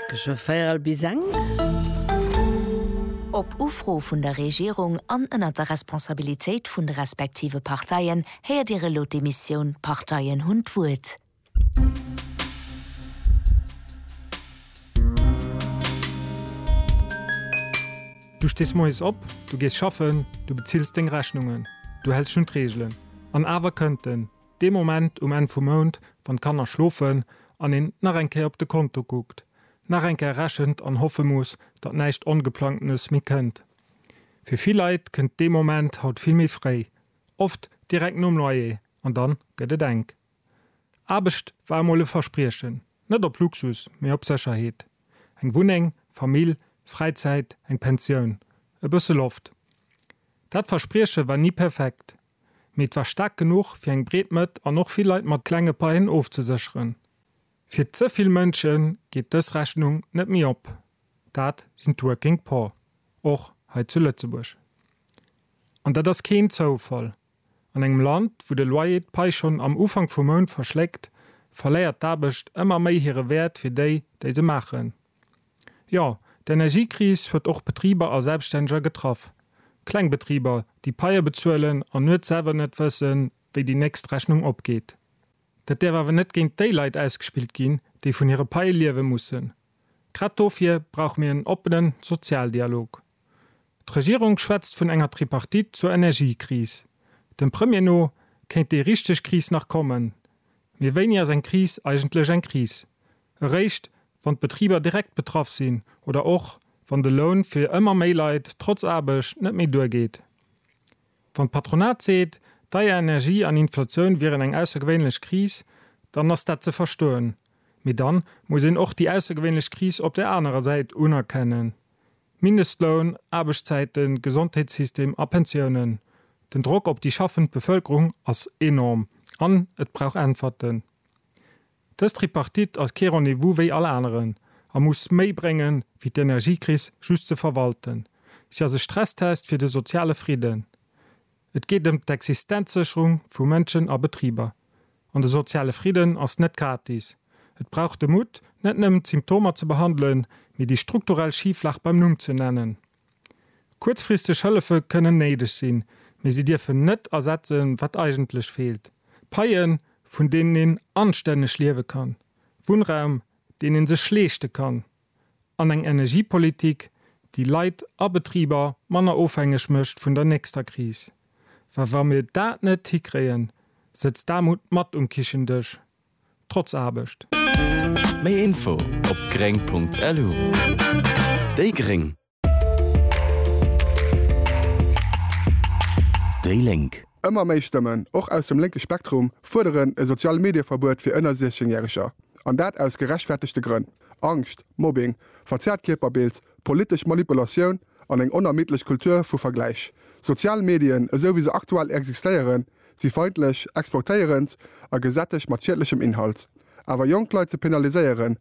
Tësche véierel bis eng. Op Ufro vun der Regierung an ënnert der Responsabilitéit vun de respektive Parteien héiert Dir elo d'Emissioun D'Parteien hunn d'Wuert. Du stees moies op, du gees schaffen, du bezills deng Rechnungen, du häls schonn d'Reegelen, an awer kënnt den. Dee Moment um Enn vum Mount, wann d'Kanner schlofen an een nach eng Kéier op de Konto kuckt, nach eng Kéier rechent an hoffe muss, datt näischt Ongeplangtenes méi kënnt. Fir vill Leit kënnt dee Moment haut vill méi fréi, oft direkt nom Loyer an dann gëtt et enk. Aarbecht war emol e Verspriechen, net op Luxus, mee op Sécherheet. Eng Wunneng, Famill, Fräizäit, eng Pensioun, e bësse Loft. Dat Versprieche war ni perfekt, mee et war staark genuch fir eng breet Mëtt an och vill Leit mat klenge Paien ofzesécheren. Fir ze vill Mënsche geet dës Rechnung net méi op, dat sinn d'Working Poor, och hei zu Lëtzebuerg. An dat ass keen Zoufall, an engem Land wou de Loyer d'Pai schonn am Ufank vum Mount verschléckt, verléiert d'Aarbecht ëmmer méi hire Wäert fir déi, déi se maachen. Jo, d'Energiekris huet och Betriber a Selbststänneger getraff. Kleng Betriber, déi Paië bezuelen an nuets selwer net wëssen, wéi déi nächst Rechnung opgeet. Dat däerf awer net géint déi Leit ausgespillt ginn, déi vun hire Paië liewe mussen. Grad dofir brauche mir en oppenen Sozialdialog. D'Regierung schwätzt vun enger Tripartite zur Energiekris. Dem Premier no kéint déi richteg Kris nach kommen. Mee wéini ass eng Kris eigentlech eng Kris? Eréischt, wann d'Betriber direkt betraff sinn oder och, wann de Loun fir ëmmer méi Leit trotz Aarbecht net méi duergeet? Wann d'Patronat seet, deier Energie an Inflatioun wieren eng aussergewéinlech Kris, dann ass dat ze verstoen. Mee dann muss een och déi aussergewéinlech Kris op där anerer Säit unerkennen. Mindestloun, Aarbechtszäiten, Gesondheetssystem a Pensiounen, den Drock op déi schaffend Bevëlkerung ass enorm an et brauch Äntwerten. Dës Tripartite ass kee Rendez-vous wéi all aneren a muss méi bréngen, wéi d'Energiekris just ze verwalten. Si ass e Stresstest fir de soziale Fridden. Et geet ëm d'Existenzsécherung vu Mënschen a Betriber. An de soziale Fridden ass net gratis. Et brauch de Mutt, net nëmmen d'Symptomer ze behandelen, mee déi strukturell Schiflag beim Numm ze nennen. Kuerzfristeg Hëllefe kënnen néideg sinn, mee si dierfen net ersetzen, wat eigentlech feelt, Paien, vun deenen een anstänneg liewe kann, Wunnraum, deen ee sech leeschte kann. an eng Energiepolitik, déi Leit a Betriber manner ofhängeg mécht vun der nächster Kris. Well wa mir dat net hikréien, sëtzt d'Aarmut mat um Kichendësch, trotz Aarbecht. Méi Info op gréng.lu Déi Gréng. Déi Lénk. Ëmmer méi Stëmmen, och aus dem lénke Spektrum, fuerderen e Sozial-Medie-Verbuet fir ënner 16 Järeger. An dat aus gerechtfertegte Grënn, Angscht, Mobbing, verzerrt Kierperbild, politesch Manipulatioun an eng onermiddlech Kultur vu Vergläich. Sozial Medien, esou wéi se aktuell existéieren, si feindlech, exploitéierend a gesättegt mat schiedlechem Inhalt. Awer jonk Leit ze penaliséieren,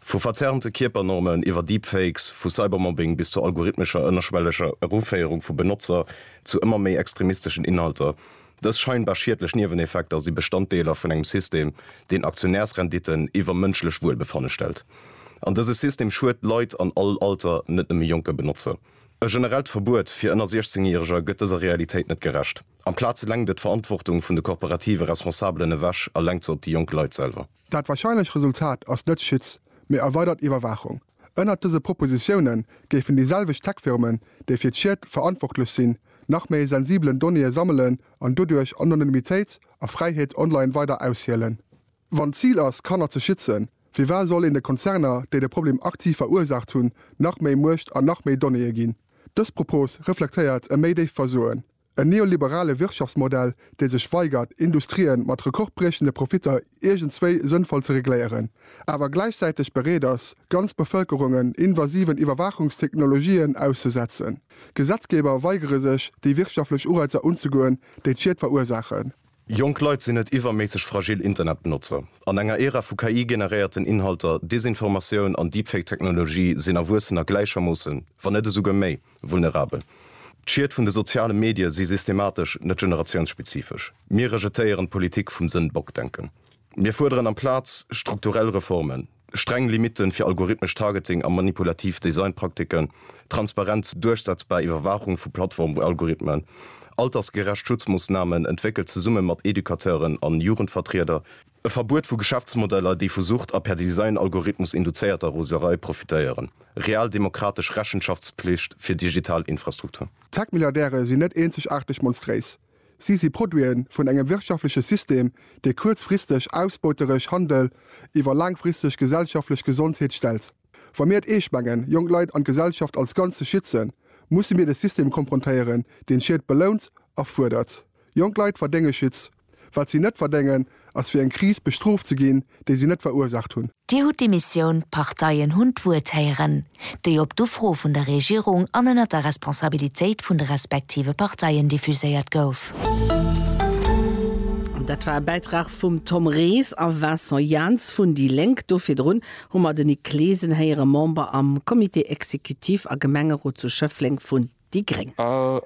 Vu verzerrte Kierpernormen iwwer Deepfakes, vu Cybermobbing bis zur algorithmescher ënnerschwelleger Eruféierung vu Benotzer zu ëmmer méi extremisteschen Inhalter, dës scheinbar schiedlech Nieweneffekter si Bestanddeeler vun engem System, deen Aktionärsrenditten iwwer mënschlech Wuelbefanne stellt. An dëse System schued Leit an all Alter, net nëmme jonke Benotzer. E generellt Verbuet fir ënner 16 Järeger gëtt dëser Realitéit net gerecht. Amplaz lenkt et d'Verantwortung vun de korporative Responsabelen ewech a lenkt se op déi jonk Leit selwer. Dat warscheinlech Resultat ass net Schitz, mee erweidert Iwwerwaachung. Ënnert dëse Propositiounen géifen déi selwecht Tech-Firmen, déi fir d'Schied verantwortlech sinn, nach méi sensibelen Donnéeë sammelen an doduerch Anonymitéit a Fräiheet online weider aushielen. Wann d'Zil ass, Kanner ze schützen, firwat soll een de Konzerner, déi de Problem aktiv verursaacht hunn, nach méi Muecht an nach méi Donnéeë ginn? Dës Propos reflektéiert e méi déift Versoen. En neoliberale Wirtschaftsmodell, dee sech weigert, Industrien mat rekordbriechende Profitter iergendswéi sënnvoll ze regléieren, awer gläichzäiteg bereet ass, ganz Bevëlkerungen invasiven Iwwerwaachungstechnologien auszesetzen. Gesetzgeber weigere sech, déi wirtschaftlech Ureizer unzegoen, déi d'Schied verursaachen. Jonk Leit sinn net iwwerméisseg fragil Internetbenotzer. An enger Ära vu KI-generéierten Inhalter, Desinformatioun an Deepfake-Technologie sinn Erwuessener gläichermoossen, wann net esouguer méi, vulnerabel. D'Schied vun de soziale Medie si systematesch, net generatiounsspezifesch. Mir rejetéieren d'Politik vum Sëndbock-Denken. Mir fuerderen amplaz strukturell Reformen. streng Limitten fir algorithmesch Targeting a manipulativ Designpraktiken, transparent duerchsetzbar Iwwerwaachung vu Plattformalgorithmen, altersgerecht Schutzmoossnamen, entwéckelt zesumme mat Educateuren an Jugendvertrieder, e Verbuet vu Geschäftsmodeller, déi vu Sucht a per Designalgorithmus induzéierter Roserei profitéieren, real demokratesch Rechenschaftspflicht fir digital Infrastruktur. D'Tech-Milliardäre sinn net eenzegaarteg monstréis. Si si Produite vun engem wirtschaftleche System, dee kuerzfristeg ausbeuteresch Handel iwwer laangfristeg gesellschaftlech Gesondheet stellt. Wa mir et eescht mengen, jonk Leit an d'Gesellschaft als Ganz ze schützen, musse mir de System konfrontéieren, deen Schied belount a fuerdert. Jonk Leit verdénge Schutz. Wat si net verdéngen, ass fir eng Kris bestrooft ze ginn, déi si net verursaacht hunn. Dir hutt déi Missioun, d'Parteien hunn d'Wuert héieren, déi op d'Ufro vun der Regierung an ënnert der Responsabilitéit vun de respektive Parteien diffuséiert gouf. Dat war e Bäitrag vum Tom Ries a Vincent Janz vun déi Lénk. Do virdrun hu mer de Nic Claesen héieren, Member am Comité exécutif a Gemengerot zu Schëffleng vun déi gréng. A